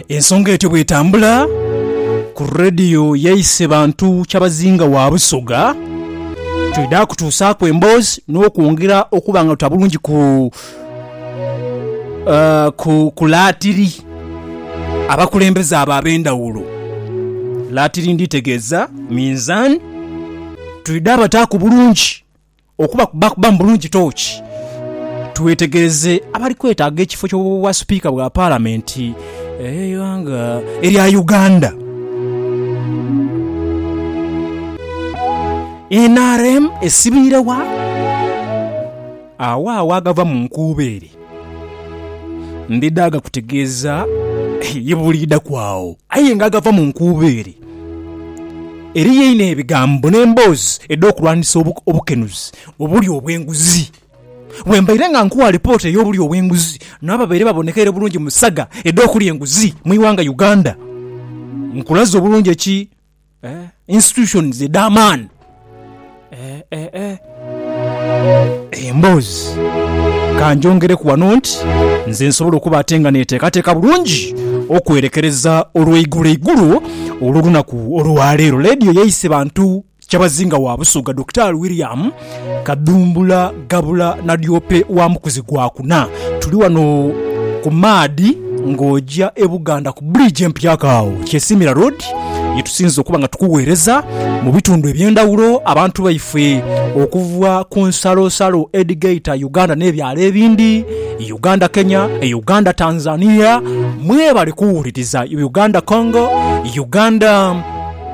Ensonga etyo bw'etambula ku Radio yaise Bantu Kyabazinga wa Busoga, twidha kutuusaaku emboozi n'okwongera okuba nga tuta bulungi ku ku laatiri abakulembeze abo ab'endhawulo. Laatiri ndhitegeeza minzaani, twidha bataaku bulungi. Okuba baakubamu bulungi tooki, twetegereze abali kwetaaga ekifo ky'Obwasipiika bwa Palamenti ey'eighanga erya Uganda. Nrm esibiire wa? Agho agho agava mu nkuubeere. Ndidha gakutegeeza ye buliidhaku agho. Aye nga agava mu nkuubo ere, eriyo einho ebigambo n'emboozi edh'okulwanisa obukenuzi obuli obw'enguzi. Bwe mbaire nga nkuwa alipoota ey'obuli obw'enguzi n'abo abaire babonekeire bulungi mu saga edh'okulya enguzi mu ighanga Uganda, nkulaze obulungi eki Institutions edh'amaani. Emboozi. Ka ngyongereku wano nti nze nsobola okuba ate nga neteekateeka bulungi okwerekereza olweiguloigulo olw'olunaku olwaleero. Leediyo yaise bantu kyabazinga wa Busoga Dokitaali William Kadhumbula gabula na Lyope wa Mukuzi gwa kuna. Tuli wano ku maadhi ng'oja e Buganda ku bridge empya agho Kyesiimira Road ye tusinze okuba nga tukuweereza mu bitundu eby'endhawulo abantu baife okuva ku nsalosalo edhigaita Uganda n'ebyalo ebindi, Uganda Kenya, Uganda Tanzania. Mwebale kuwuliriza Uganda Congo, Uganda.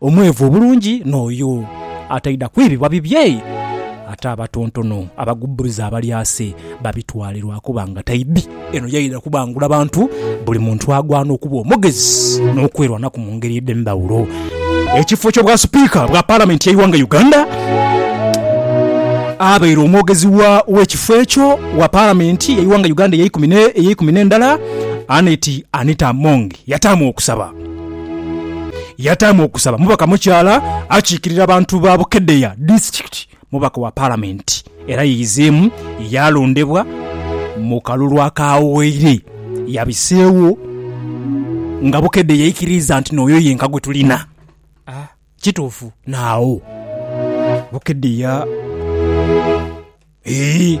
Omweevu obulungi n'oyo ataidha kwibibwa bibye, ate abatontono abagubbuluza abalyase babitwale lwa kuba nga taidhi. Eno yaidha kubangula bantu, buli muntu agwana okuba omugezi n'okwerwanaku mu ngeri edh'endhawulo. Ekifo ky'Obwasipiika bwa Palamenti y'eighanga Uganda, abaire omwogezi w'ekifo ekyo wa Palamenti y'eighanga Uganda ey'eikumi n'endala, Annet Anita Among yataamu okusaba. Yataamu okusaba mubaka mukyala akiikirira bantu ba Bukedea disitikiti, mubaka wa Palamenti era yeizeemu yaalondebwa mu kalulu akaawaire. Yabiseewo nga Bukedea yaikiriiza nti n'oyo yenka gwe tulina. Kituufu naagho Bukedea. Eeh.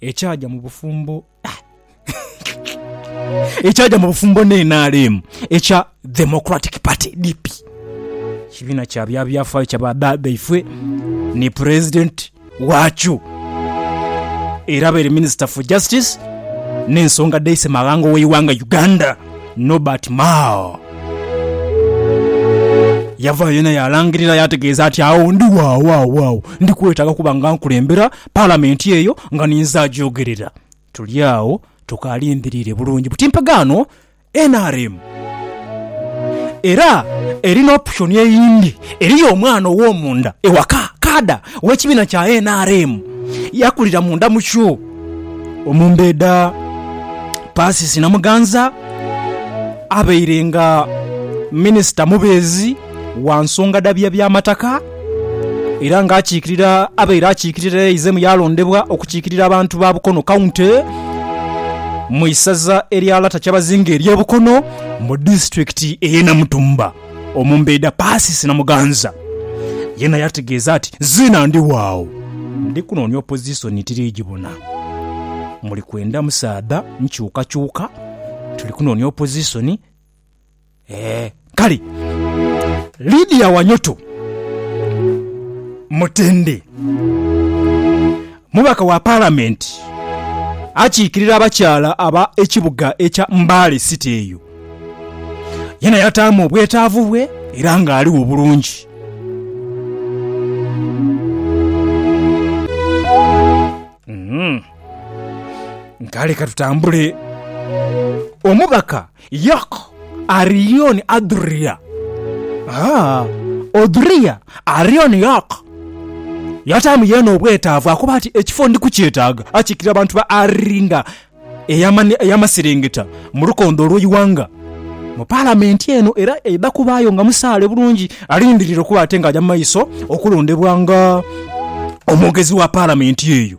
Ekyaja mu bufumbo ekyaja mu bufumbo ne NRM ekya Democratic Party, DP, ekibiina kya bya byafaayo kya ba dadaifwe ni pulezidenti waakyo era abaire minisita for justice n'ensonga dh'eise maghanga ow'eighanga Uganda Norbert Mao yavaayo yena yaalangirira yaategeeza nti agho ndi waawaawaao ndi kwetaaga kuba nga nkulembera Palamenti eyo nga ninze agyogerera. Tuli agho tukalindhiriire bulungi buti mpagaano nrm era eri n'option eyindi. Eriyo omwana ow'omunda ewaka, kaada w'ekibiina kya nrm, yakulira munda mukyo. Omumbeeda Persis Namuganza abaire nga minisita mubeezi wa nsonga dha bya by'amataka. Era nga akiikirira abaire akiikirira eizimu yaalondebwa okukiikirira abantu ba Bukono County mu isaza erya Lata Kyabazinga ery'e Bukono mu disitulikiti ey'e Namutumba. Omumbeeda Persis Namuganza yena yategeeza ati, Nziina ndi waagho ndi kunoonia opozisoni tiri gibona. Muli kwenda musaadha nkyukakyuka, tuli kunoonia opozisoni. Ee, kale Lidia Wanyoto Mutende, mubaka wa Palamenti akiikirira abakyala aba ekibuga ekya Mbale City eyo, yena yataamu obwetaavu bwe era ng'aligho bulungi. Kale katutambule. Omubaka. Yok, Arion, Adhuria. Haa, Odhuria, Arion, Yok. Yataamu yeene obwetaavu akuba ati, Ekifo ndi kukyetaaga. Akiikirira abantu ba Ari nga ey'amani ey'amaserengeta mu lukondo olw'eighanga mu Palamenti eno era aidha kubaayo nga musaale bulungi alindirire okuba ate ng'aja mu maiso okulondebwa nga omwogezi wa Palamenti eyo.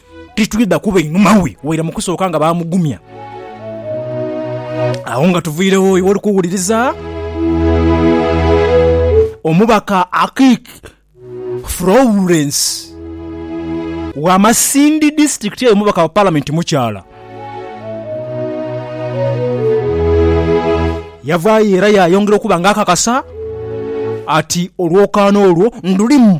titwidha kuba inhuma we, waire mu kusooka nga baamugumya. Agho nga tuviiregho iwe oli kuwuliriza omubaka Akik Florence wa Masindi District aye omubaka wa Palamenti mukyala. Yavaayo era yaayongera okuba nga akakasa ati olwokaano olwo ndulimu.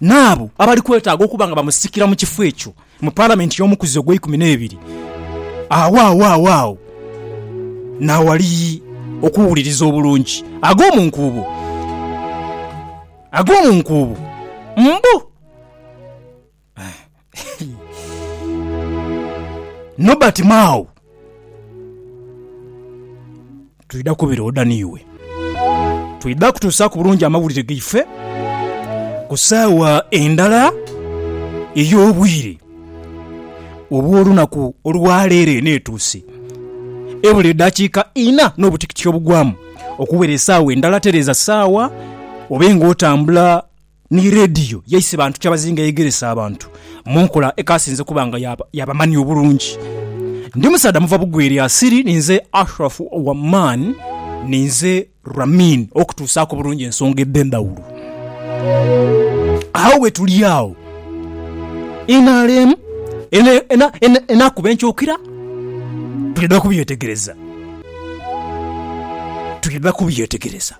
N'abo abali kwetaaga okuba nga bamusikira mu kifo ekyo mu Palamenti y'omukuzi ogw'eikumi n'ebiri, agho awaagho agho n'awali okuwuliriza obulungi ag'omu nkuubo, ag'omu nkuubo, mbu. Nobert Mao, twidha kubira oda n'iwe. Twidha kutuusaaku bulungi amawulire gaife ku saawa endala ey'obwire obw'olunaku olwa leero eno etuuse. Ebula eddakiika ina n'obutikitiki obugwamu okuwera esaawa endala, tereeza saawa obe ng'otambula ni leediyo yaise bantu kyabazinga eyegeresa abantu mu nkola ekaasinze kuba nga ya bamani obulungi. Ndi musaadha muva Bugweri asiri, ninze Ashraf owa Man, ninze Ramin okutuusaaku obulungi ensonga edh'endhawulo. Agho bwetuli agho, nrm enaakuba enkyukira, twidha kubyetegereza, twidha kubyetegereza.